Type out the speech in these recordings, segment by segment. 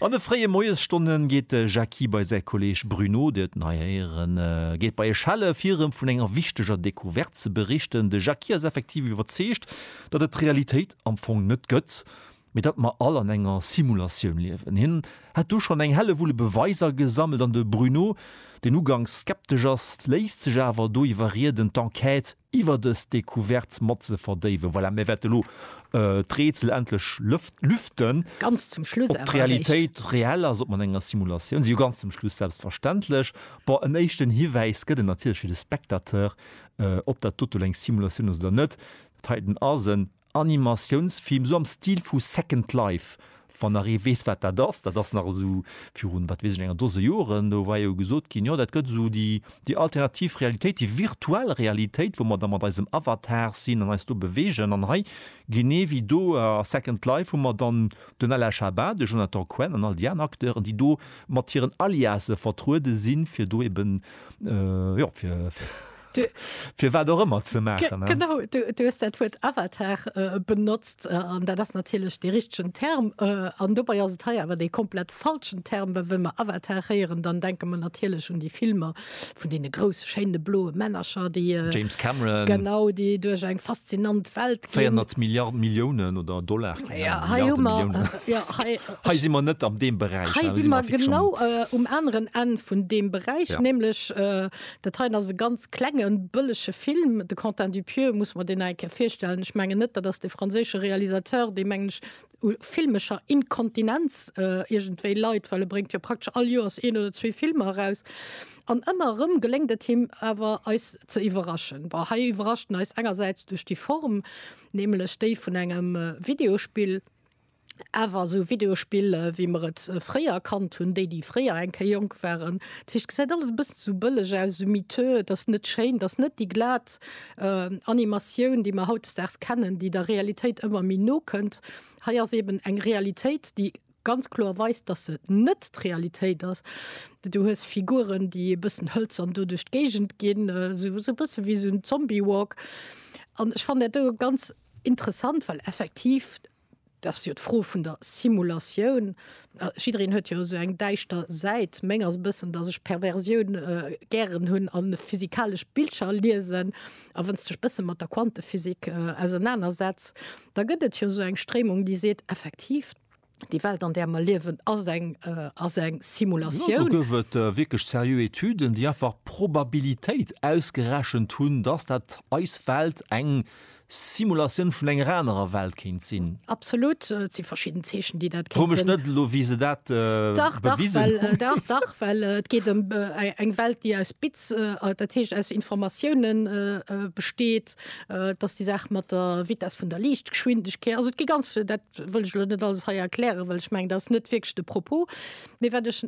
An de fréie Moiesstonne geet de Jackie bei säi Kolleeg Bruno, Dir hutt en hei héieren, geet bei e Schelle fir erëm vun enger wichteger Decouverte ze berichten. De Jackie ass effektiv iwwerzeegt, datt et d'Realitéit am Fong net gëtt, mee datt mer all an enger Simulatioun liewen. Hien hätt do schonn eng Hellewulle Beweiser gesammelt an de Bruno, deen uganks skeptesch ass, léisst sech awer do iwwerrieden, d'Enquête iwwer dës Decouverte mat ze verdéiwen. Voilà, mir wäerte lo d'Rätsel endlech lüften. Ganz zum Schluss awer eréischt. Ob d'Realitéit reell ass, ob mer an enger Simulatioun sinn, jo ganz zum Schluss selbstverständlech. Bon, en éischten Hiwäis gëtt et natierlech fir de Spectateur, ob dat dote lo eng Simulatioun ass oder net. Dat heiten ass en. Animatiounsfilm, esou am Stil vu Second Life, wann nach ee weess, wat dat ass. Dat ass nach esou virun, wat weess ech, enger Dose Joren. Do war jo gesot ginn, jo dat gëtt esou déi, déi alternativ Realitéit, déi virtuell Realitéit, wou mer da mat eisem Avatar sinn an eis do beweegen. An hei, genee ewéi do a Second Life, hu mer dann den Alain Chabat, de Jonathan Cohen an all déi aner Acteuren, déi do mat hiren Aliase vertruede sinn, fir do eben, jo, fir, Du, Fir wat och ëmmer ze maachen. Ge genau, du, du hues dat Wuert Avatar äh, benotzt, äh, an dat ass natierlech dee richtegen Term. Äh, an dobei ass et hei awer dee komplett falschen Term, well wa mer Avatar héieren, dann denke mer natierlech un déi Filmer vun deene grousse, schéine bloe Männercher, déi. Äh, James Cameron. Genau, déi duerch eng faszinant Welt ginn. 400 Milliarden Milliounen oder Dollar. Ja, hei hu mer. Äh, ja, hei, hei si mer net am deem Beräich. Hei si mer genau äh, um aneren Enn vun deem Beräich, ja. nämlech äh, Dat heien ass e ganz klenge bëllege Film. De Quentin Dupieux muss mer deen nach eng Kéier virstellen. Ech mengen net, dat ass dee franséische Realisateur, dee mengen ech u filmescher Inkontinenz iergendwéi leit, well e bréngt jo praktesch all Joers een oder zwee Filmer eraus. An ëmmer erëm geléngt et him awer eis ze iwwerraschen. Bon, hei iwwerrascht en eis engersäits duerch déi Form, nämlech déi vun engem Videospill. Awer esou Videospill, wéi mer et fréier kannt hunn, déi, déi fréier eng Kéier jonk waren, dat heescht, et gesäit alles e bëssen esou bëlleg aus, esou miteux, et ass net schéin, et ass net déi glat Animatioun, déi mer hautdesdaags kennen, déi der Realitéit ëmmer méi no kënnt. Hei ass eeben eng Realitéit, déi ganz kloer weist, dass se net d'Realitéit ass. Du hues Figuren, déi e bëssen hëlzern do duerch d'Géigend ginn, esou e bësse wéi esou en Zombie Walk. An ech fannen dat do ganz interessant, well effektiv, Dat ass jo d'Fro vun der Simulatioun. Jiddereen huet jo esou eng däischter Säit. Meng ass e bëssen, datt ech Perversioun gären hunn a physikalesch Bildcher liesen. A wann s de dech e bësse mat der Quantephysik ausernaner setz, da gëtt et jo esou eng Stréimung, déi seet, effektiv, déi Welt, an där mer liewen, ass eng, ass eng Simulatioun. Do gouf et wierklech seriö Etüden, déi einfach d'Probabilitéit ausgerechent hunn, datt dat eis Welt eng Simulatioun vun enger anerer Welt kéint sinn. Absolut, et si verschidden Zeechen, déi dat kéint sinn. Fro mech net elo, wéi se dat bewisen hunn. Dach, dach, well, dach, dach, well et geet ëm eng Welt, déi aus Bits, dat heescht aus Informatiounen besteet. Et ass déi Saach mat der Vitess vun der Liichtgeschwindegkeet. Also et gi ganz vill, dat wëll ech elo net alles hei erklären, well ech mengen, dat ass net wierklech de Propos. Mee wat ech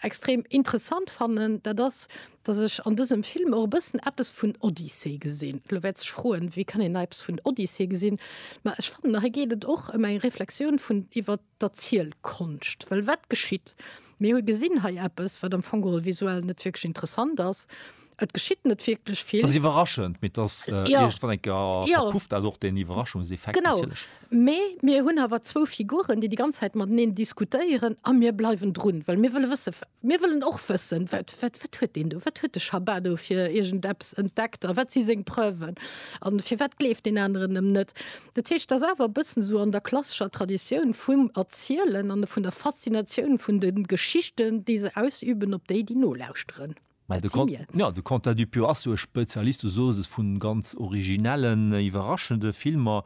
extrem interessant fannen, dat ass, dass ech an dësem Film och e bëssen eppes vun Odyssee gesinn. Elo wäert sech froen, wéi kann een hei eppes vun Odyssee gesinn? Mä ech fannen, hei geet et och ëm eng Reflexioun vun iwwer d'Erzielkonscht. Well wat geschitt? Mir hu gesinn hei eppes, wat am Fong geholl visuell net wierklech interessant ass. Et geschitt net wierklech vill. Et ass iwwerraschend, mee et ass iergendwann eng Kéier verpufft dat och, deen Iwwerraschungseffekt natierlech. Genau. Mee mir hunn awer zwou Figuren, déi déi ganz Zäit mateneen diskutéieren a mir bleiwen drun, well mir wëlle wësse, mir wëllen och wëssen, wat, wat, wat huet deen do, wat huet de Schabat do fir iergendeppes entdeckt a wat si seng Preuven a firwat gleeft deen aneren em net. Dat heescht, et ass awer e bëssen esou an der klassescher Traditioun vum Erzielen an vun der Faszinatioun vun de Geschichten, déi se ausüben op déi, déi nolauschteren. Mä de Quentin Dupieux ass jo e Spezialist, du soos es, vun ganz originellen, iwwerraschende Filmer.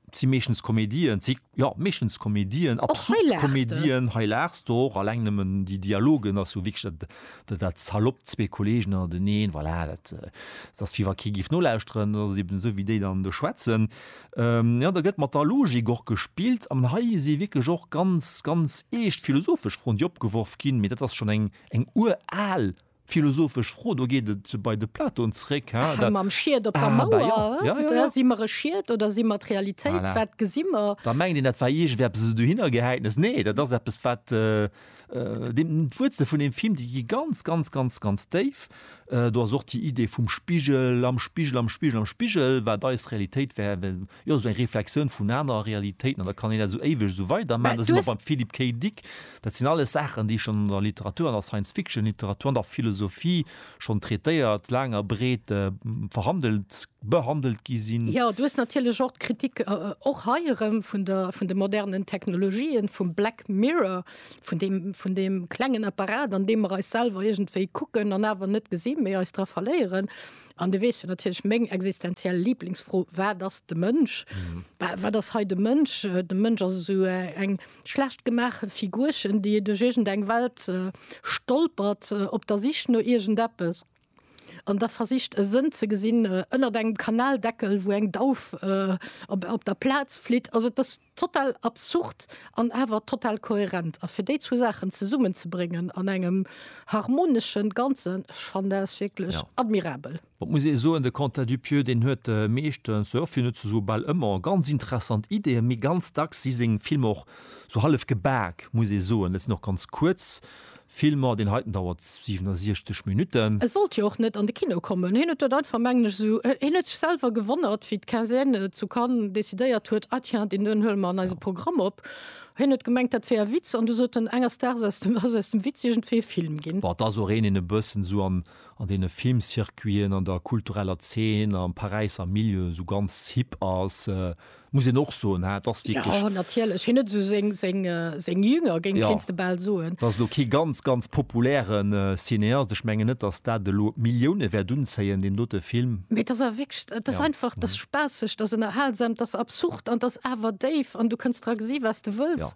Et si meeschtens Komedien, et si, jo, meeschtens Komedien, absurd Komedien. Hei laachs de och. Alleng nëmmen déi Dialogen ass jo wierklech dat, dat, dat saloppt, zwee Kollegen an den een, voilà, dat, dat ass wéi wa kee géif nolauschteren. Dat ass eben esou, wéi déi dann do schwätzen. Jo, do gëtt mat der Logik och gespillt. An hei si wierklech och ganz, ganz eescht philosophesch Froen, déi opgeworf ginn. Mee dat ass schonn eng Eng ural philosophesch Fro, do geet et bei de Platon zréck, hein, dat. Mam Schied op der Mauer, hein, si mer e Schied oder si mer d'Realitéit, wat gesi mer? Da mengt een, dat war iergendeppes esou dohinnergehäitnes. Nee, dat ass eppes, wat d'Wuerzel vun deem Film, déi gi ganz, ganz, ganz, ganz déif. Do ass och déi Idee vum Spigel, am Spigel, am Spigel, am Spigel, wat eis Realitéit wär, well, jo, esou eng Reflexioun vun anerer Realitéiten, an da kann een dat esou éiweg esou weiderman. Da si mer beim Philippe K. Dick. Dat sinn alles Saachen, déi schonn an der Literatur, an der Science-Fiction-Literatur, an der Philosophie schonn traitéiert, laang a breet verhandelt, behandelt gi sinn. Jo, du hues natierlech och d'Kritik, och hei erëm, vun der, vun de modernen Technologien, vum Black Mirror, vun dem, vun dem klengen Apparat, an deem mer eis selwer iergendwéi kucken an awer net gesinn, mee eis dra verléieren. An du weess jo natierlech meng existenziell Lieblingsfro, Wat ass de Mënsch? Wa wat ass hei de Mënsch? De Mënsch ass esou eng schlecht gemaache Figurchen, déi duerch iergendeng Welt stolpert op der Sich no iergendeppes. An da versicht e Sënn ze gesinn ënnert engem Kanaldeckel, wou eng Dauf op der Plaz flitt. Also et ass total absurd an awer total kohärent. A fir déi zwou Saachen zesummenzebréngen an engem harmonesche Ganzen, ech fannen dat ass wierklech admirabel. Et muss ee soen, de Quentin Dupieux, deen huet meeschtens, jo fir net ze soe bal ëmmer, ganz interessant Ideeën, mee ganz dacks si seng Filmer och sou hallef gebaak, muss ee soen. Et sinn och ganz kuerz Film, ma deen heiten dauert 67 Minuten. E sollt jo och net an de Kino kommen. Hien huet dat einfach, mengen ech, esou, hien huet sech selwer gewonnert, wéi d'Quinzaine zu Cannes decidéiert huet, ah tiens, deen doen huele mer an eise Programm op. Hien huet gemengt, dat wär e Witz, an du sot en, enges Daags ass aus dem Witz iergendwéi e Film ginn. Bon, et ass och een, deen e bëssen esou an deene Filmcircuiten, an der kultureller Zeen, am Paräisser Milieu esou ganz hip ass. muss een och soen, et ass wierklech. Jo, natierlech, hien huet esou seng, seng, seng Jünger, géing, kéints de bal soen. Dat ass elo kee ganz, ganz populäre Cineast. Ech mengen net, datt dat elo d'Millioune wäert unzéien, deen dote Film. Mee et ass awer wierklech, et ass einfach, et ass spaasseg, et ass ënnerhalsam, et ass absurd an et ass awer déif an du kënns dra gesi wat s de wëlls.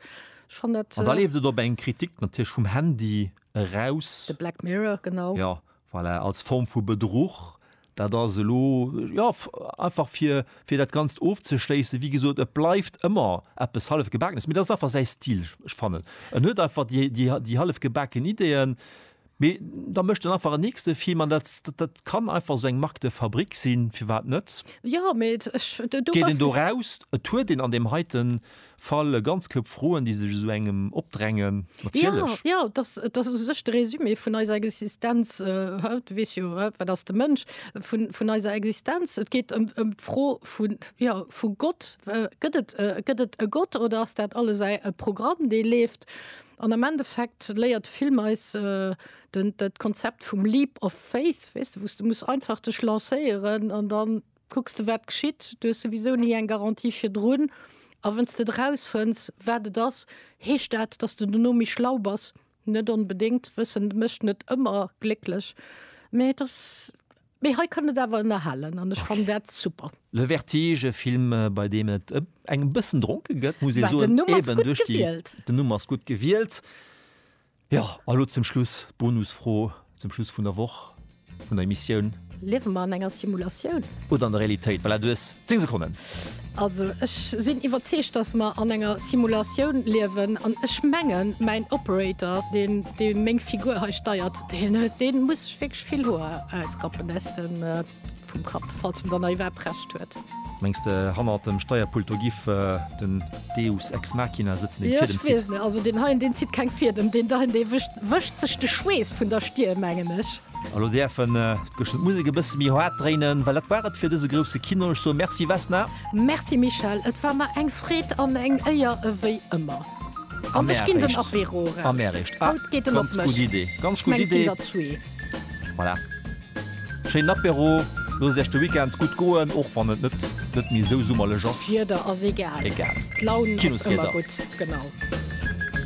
Ech fannt dat. An da leeft et op eng Kritik natierlech vum Handy eraus. De Black Mirror, genau. Jo, Voilà, als Form vu Bedruch. Dat ass elo, jo, einfach fir, fir dat Ganzt ofzeschléissen. Wéi gesot, et bleift ëmmer eppes Hallefgebaakenes, mee dat ass einfach säi Stil. Ech fannen, en huet einfach déi, déi, déi hallefgebaken Ideeën, mee da mécht en einfach en nächste Film an dat, dat kann einfach esou eng Marque de fabrique sinn, firwat net? Jo, mee ech, do, do bass. Geet en do raus, et huet een an deem heiten Fall e ganz Koup Froen, déi sech esou engem opdrängen, natierlech. Jo, jo, dat ass u sech de Résumé vun eiser Existenz haut. Du weess jo, wat ass de Mënsch? Vun eiser Existenz. Et geet ëm d'Fro vun, jo, vu Gott. Gëtt et, gëtt et e Gott oder ass dat alles e Programm, dee leeft? An am Endeffekt léiert de Film eis dat Konzept vum Leap of Faith, weess de, wou s de muss einfach dech lancéieren an dann, Kucks de wat geschitt, du hues souwisou ni eng Garantie virdrun, a wann s de et erausfënns wat et ass, heescht dat, datt s de dono méi schlau bass? Net onbedéngt, Wëssen mécht net ëmmer glécklech, mä et ass, mee hei kann et awer ënnerhalen an ech fannen dat super. Le Vertige, e Film bei deem et eng bëssen dronke gëtt, muss ee soen, eben duerch déi, den Numm ass gutt gewielt, Jo, a lo zum Schluss d'Bonusfro zum Schluss vun der Woch, vun der Emissioun. Liewe mer an enger Simulatioun? Oder an der Realitéit? Voilà, du hues 10 Sekonnen. Also ech sinn iwwerzeegt, datt mer an enger Simulatioun liewen. An ech mengen, mäin Operator, deen, dee meng Figur hei steiert, deen, dee muss sech wierklech vill Hoer ausrappen aus dem. Vum Kapp, falls en dann nach iwwerhaapt Recht huet. Mengs de hannert dem Steierpult do giff den Deus ex machina sëtzen deen d'Fiedem zitt? Jo, ech weess net. Also deen heien, deen zitt keng Fiedem, deen do, dee wëscht, wëscht sech de Schweess vun der Stirn, mengen ech. A lo däerfen d'Gëscht d'Musek e bësse méi haart dréinen, well dat war et fir dëse grousse Kino. Ech soe Merci Vesna. Merci Michel, et war mer eng Freed an eng Éier ewéi ëmmer. An ech ginn den Apéro eraus. Haut geet en op mech. Ganz gutt Idee. Ganz gutt Idee. Ech meng d'Kinderzwee. Voilà. Schéinen Apéro, loosst Iech de Weekend gutt goen, och wann et net net méi esou summerlech ass. D'Wieder ass egal. Egal. D'Laun ass ëmmer gutt. Kinosrieder. Genau.